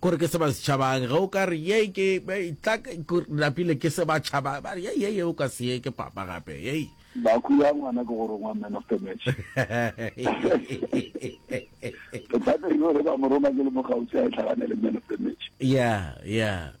Kore ke se ba se tšhabang, ge o ka re ye ke tla napile ke se ba tšhaba, ba re ye ye ye o ka se ye ke papa gape yei. Baku ya ngwana ke go rongwa man of the match. Bothata ke gore ba mo roma ke le mo kgauswi a e tlhaganele man of the match. Yeah, yeah.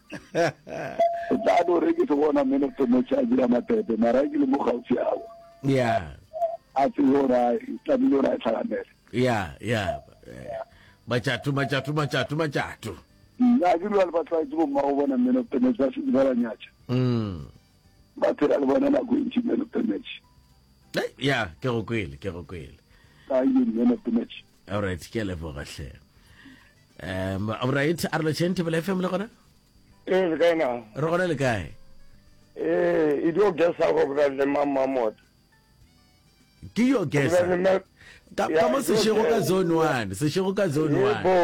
tla no re ke se bona men of the match a dira matete mara ke le mo gaufi ao yeah a tse yo ra tlamile ra tlhaganela yeah yeah bachatu bachatu bachatu bachatu nna ke lwa le batlwaetse bo mmago bona men of the match ba se ba ba nyatša mm ba phela le bona nako e ntši men of the match ya ke go kwele ke go kwele ka ye men of the match all right ke leboga hle um right a re lotšheng thebela fm le gona ee le kae na re gona le kae ee e dio gesa go bra le mamamota ke yo gesa ka mo sešego ka zone one sešego ka zone one bo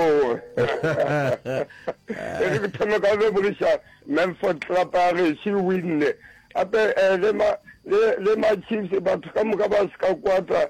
e re thome ka le bolisa Memphis Club a re she winne ape eh, le ma le le ma Chiefs batho ka moka ba se ka kwata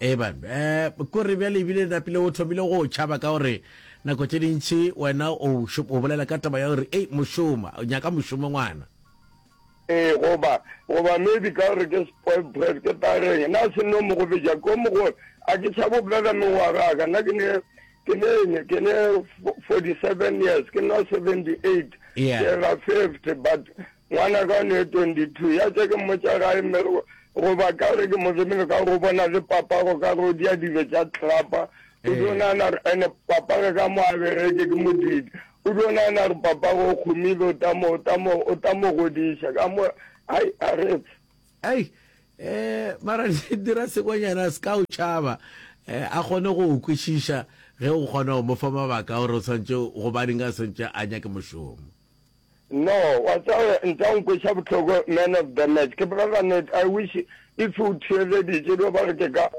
eban um kore bjale ebile napile o thomile go tšhaba ka gore nako tše dintšhi wena o bolela ka taba ya gore ei mošoma nyaka mošomo ngwana ee goba goba maybe ka gore ke spoil bread ke tareng na se no mo go beja ko mo go a ke sa bobolela mengwaga ka nna ke ne ke ne ke ne 47 years ke nna 78 ke ga 50 but ngwana ka ne 22 ya tse ke mmotsa gae mme Goba ka gore ke Moremi re ka go bona le papa go ka go dia dilo tša tlapa. O dio nana re ene papa re ka mo a bereke ke modidi. O dio nana re papa go khumile o ta mo o ta mo o ta mo godiša ka mo ai a re pf. Ai eh mara dira sekonyana se ka o tšaba eh, a kgone go o kwešiša ge o kgona go mo fa mabaka gore o swantše gobaneng a swantše a nyake mošomo. No, wa tseba ntsa nkweša bohloko man of the match. Ke bolela net, I wish if u theeleditše do ba re ke ka.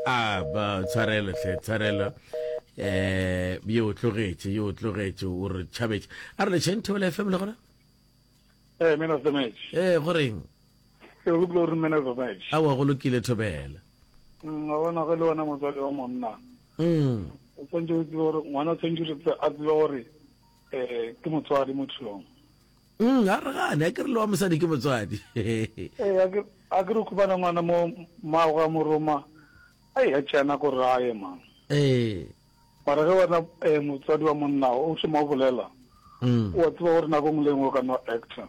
Ah, ba tshwarelo hle, tshwarelo. Eh, yo o tlogetše, yo o tlogetše, o re tšhabetše. A re lešeng Thobela FM le gona? Eh, man of the match. Eh, go reng? Ke re go kile gore man of the match. Awa go lokile Thobela. Mm, wa bona ge le wena motswadi wa monna. Mm. O tswantse o tsebe gore ngwana o tswantse a tsebe gore Eh, ke motswadi mothong. Mm, ga re gane, a ke re le wa mosadi ke motswadi. Eh, a ke a ke re kubana ngwana mo mmago ga moroma. Ai, a tšea nako gore a ye mang. Eh. Mara ge wena eh, motswadi wa monna o šoma o bolela, Mm. o a tseba gore nako nngwe le nngwe o ka no actor.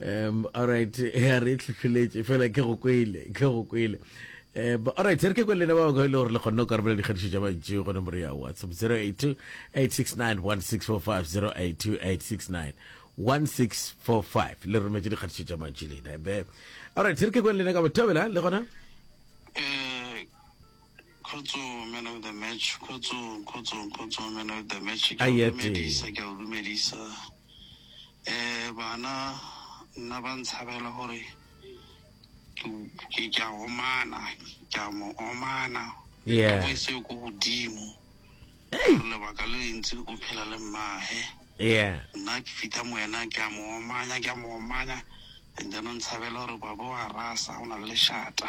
um alright ya re tlhotlholetše fela ke go kwele ke go kwele um alright re ke kwele lena ba bangwe e le gore le kgonne go karabela dikgatišo tša mantši gone more ya whatsapp 082 869 1645 082 869 1645 le rometše dikgatišo tša mantši lena be alright re ke kwele lena ka bothobela le gona um Khotso man of the match. Khotso, khotso, khotso man of the match. Ke a Aye, tee. dumedisa, ke a o dumedisa. Eh bana nna ba ntshabela gore ke ke- ke a omana, ke a mo omana. Yeah. Ka seo ko godimo. Gore lebaka le lentsi o phela le mmahe. Yeah. Nna ke fita mo wena ke a mo omanya, ke a mo omanya. And then o ntshabela gore babo wa rasa o na le lešata.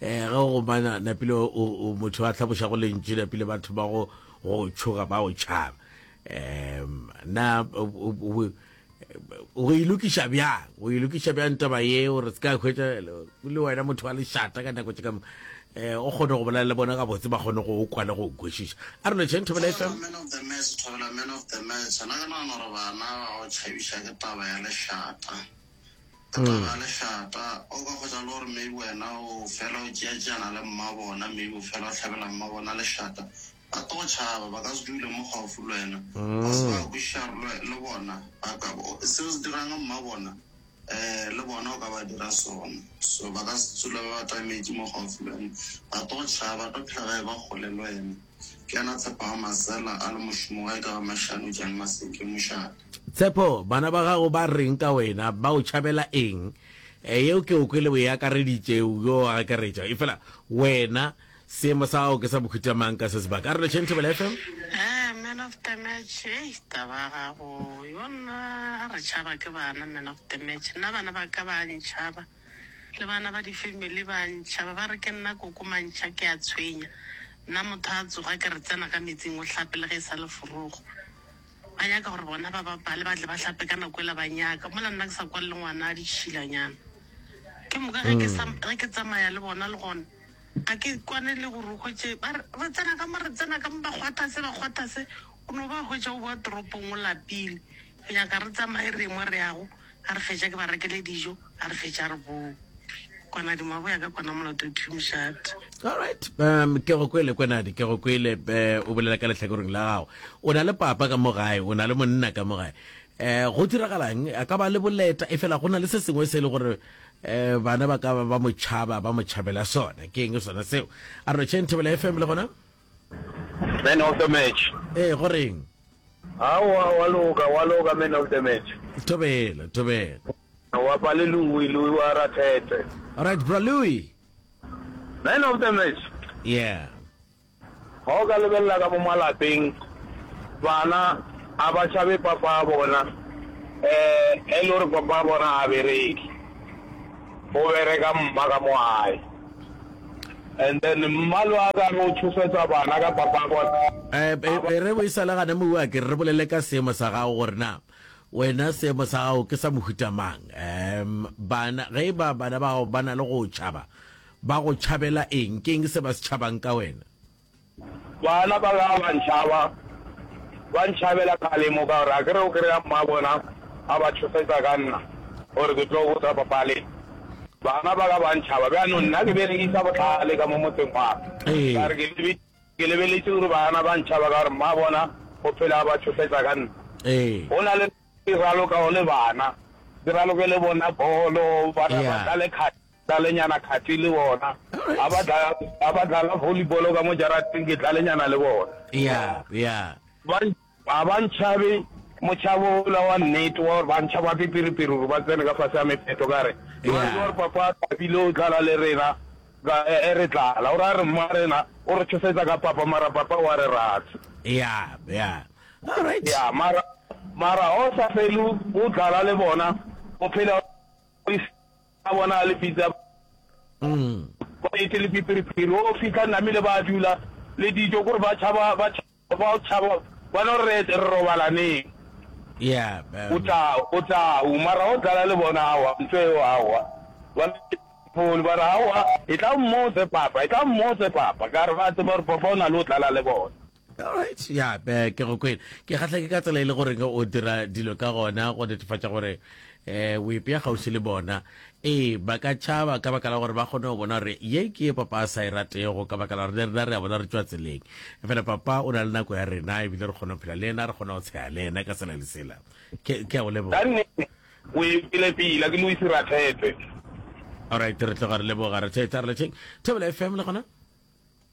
Ee, ge go mana napile o, o motho a hlabošago lentšu napile ba thoma go go tšhoga ba o tšhaba. Um na o- o- o- o- go ilokiša bjang go ilokiša bjang taba ye o re se ka hwetša le wena motho wa lešata ka nako tše ka mo- eh, o kgone go bolela le bona gabotse ba kgone go o kwa le go o kwešiša a re lotšheng thobela e Thobela man of the match, Thobela man of the match. Na ke nagana gore bana ba go tšhabiša ke taba ya lešata. Taba ga lešata, o ka hwetša le gore maybe wena o fela o tšeatšeana le mmabona, maybe o fela o hlabela mmabona lešata. Ba tlo go tšhaba, ba ka se dule mo gaufi le wena. Ba se ba kwešiša gore le bona ba ka, seo se dirang mmabona um le bona o ka ba dira sona. So ba ka se dule ba atametše mo gaufi le wena, ba tlo go tšhaba, ba tlo phela ba e-ba kgole le wena. Ke yena Tshepago Masela a le mošomo gae ka ba Mashano Jan Maseke, mošate. Tshepo, bana ba gago ba reng ka wena? Ba o tšhabela eng? Yeo ke o kwele o e akareditše, yo a akaretša. Efela wena, seemo sa gago ke sa bohuta mang ka se sebaka? A re lešeng Thobela FM. Ee, Man of the Match, hei, taba ya gago yo nna a re tšhaba ke bana, Man of the Match. Nna bana ba ka ba a ntšhaba, le bana ba di-family ba a ntšhaba, ba re ke nna koko mantšha, ke a tshwenya. Nna motho a tsoga ke re tsena ka metsing o hlape le ge e sa le forogo. Ba nyaka gore bona ba bapale ba tle ba hlape ka nako ela ba nyaka mola nna ke sa kwa le ngwana a ditšhilanyana. Ke moka ge ke sa ge ke tsamaya le bona le gona ga ke kwane le gore o hwetše ba re re tsena ka mo re tsena ka mo ba kgwatha se ba kgwatha se o no ba hwetša o bowa toropong o lapile go nyaka re tsamaye re ye mo re yago. ga re fetša ke ba rekele dijo ga re fetša re bowe kwana dimabo ya ka kwana molato two mšate alright um ke go kwele kwenadi ke go kwele eh, o bolela ka lehlakoreng la gago o na le papa ka mo gae o na le monna ka mo gae eh go diragalang a ka ba le boleta e fela go na le se sengwe se e le gore eh bana ba ka ba ba mo tšhaba ba mo tšhabela sona ke eng sona seo a re tšheng thebela fm le gona Man of the match. Ee, go reng? Aowa, wa loka, wa loka man of the match. Thobela, thobela. Wa pa le Louis, Louis wa Rathete. Alright, bra Louis. Man of the match. Yeah. Ga o ka lebelela ka mo malapeng, bana a ba tšhabe papa a bona, eh, e le gore papa a bona a bereke, o bereka mma ka mo gae. And then mmalo a ka no tšhosetsa bana ka papa bona. E, e re bo isale gane mo wa ke re bolele ka seemo sa gago gore na wena seemo sa gago ke sa mohuta mang um bana ge e ba bana ba gago ba na le go tšhaba ba go tšhabela eng ke eng se ba se tšhabang ka wena Bana ba ka ba ntšhaba, ba ntšhabela kgalemo ka gore a ke re o kry-a mmabona a ba tšhošetša ka nna gore ke tlo botsa papa le bana ba ka ba ntšhaba. Bjanong nna ke berekisa bohlale ka mo motseng wa ka re ke lebeletše gore bana ba ntšhaba ka gore mmabona o phela a ba tšhošetša ka nna. Go na le ke ralokago le bana, ke raloke le bona bolo, bana ba ka le kgale. Tlalenyana Cathy le bona a ba dla, a ba dlala volleyball ka mo jarateng, ke tlalenyana le bona. Ya, ya. Ba, ga ba ntšhabe motšhabo ola wa nnete wa gore ba ntšhaba pipiripiri gore ba tsene ka fase ga mepheto ka re, Yo a tseba gore Papa Thabile o dlala le rena, ka, e, e re dlala. O ra re mma rena o re tšhofetsa ka Papa, mara Papa o a re rata. Ya, ya. All right. Ya, mara, mara ga o sa fele o, o dlala le bona, o phela o le. a bona a le pitsa ba ete le phipiriphiri o fitlha namile ba dula le dijo kore ba tšhaba ba tšhaba ba no re re robalaneng yeah o tla o tla o mara o dlala le bona awa ntho eo awa ba phone ba ra awa e tla mmotse papa e tla mmotse papa ka re ba tseba gore papa o na le o dlala le bona alright ya yeah, ke go kwena ke kgatlha ke ka tsela e le gore o dira dilo ka gona go netefatša gore eh o ipea gausi le bona ee ba ka tšhaba ka baka la gore ba kgone go bona gore ye ke ye papa a sa e ratego ka baka la gore le rena re a bona re tswa tseleng e fela papa o na le nako ya rena ebile re kgone go phela le ena re kgone go tshega le ena ka tsela lesela ke a go leboga o e pele pila ke loise rathete alright re tloga re leboga rathete a re lecheng thebela fm le gona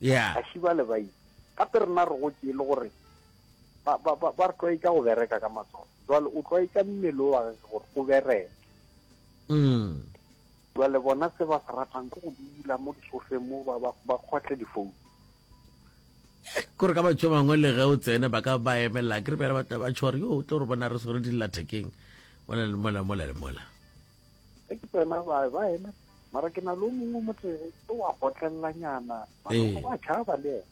yeah ga šiba le bai gape rena re go tšee le gore ba ba ba ba re tlwaetsa go bereka ka matsogo jwale o tlwaetsa mmele o wa ge gore o bereke mm jwale bona se ba se ratang ke go dula mo disofeng mo ba ba ba kgotle difounu kore ka batho ba bangwe le ge o tsene ba ka ba emelela ke re bjale ba tla ba tšhore yo o tlo re bona re swere dillathekeng mola le mola mola le mola ge ke tsena ba ba eme mara ke na le o mongwe motlere o wa gotlelelanyana ba tšhaba le ena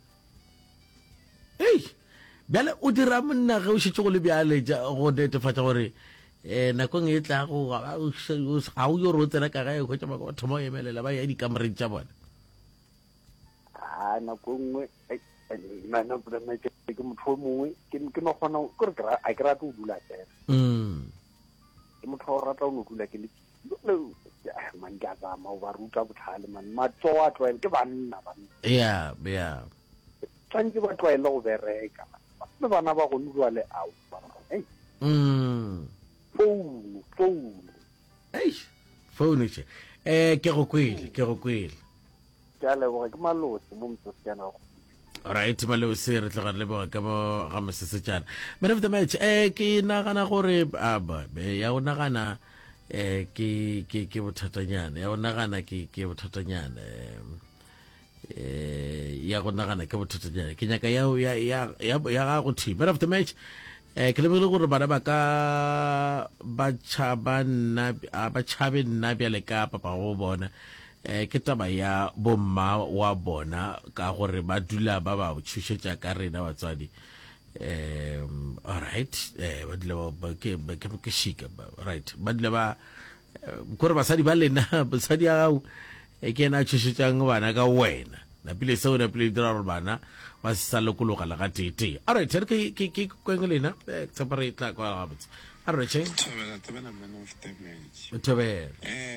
ei bjale o dira monna ge o šetse go le bjale go netefatša gore um nakong e tlago ga o yo re o tsena ka gae hwetša ba thoma go emelela ba ya dikamoreng tša bone a nako e nngwe ke motho o mongwe ke no kgona kore a ke rate go dula fela mm. ke motho wa go rata o no dula ke le eh, man ke a tsama o ba ruta botlhale man matsogo a tlwaele ke banna banna ya ya tshwanetse ba tlwaele go bereka le bana ba gone jwale ao ei mm. founu founu eish founu che eh ke go kwele ke go kwele Ke a leboga, ke Malose mo Mosesejana wa Kgodiša. Alright, Malose, re tloga re leboga ka bo ga Mosesejana. Man of the match, eh ke nagana gore ah, ba- be- ya o nagana eh ke ke ke bothatanyana, ya o nagana ke ke bothatanyana. em. eh ya go nagana ke bothatanyana ke nyaka ya ya ya ya ya ga go thi man of the match eh ke lebogile gore bana ba ka ba tšhaba nna a ba tšhabe nna bjale ka papa go bona Eh, ke taba ya bomma wa bona ka gore ba dula ba ba tšhošetša ka rena batswadi um alright eh, ba dula ba- ke ke- ke shika ba- right ba dula ba eh, kore basadi ba lena basadi ya gago e ke ena a tšhošetšang bana ka wena napile seo napile dira gore bana ba se sa lokologa le ga teetee alright re ke- ke ke kweng lena eh, tshepa re tla kwa gabotse a re che Thobela, thobela man of damage. thobela Eh,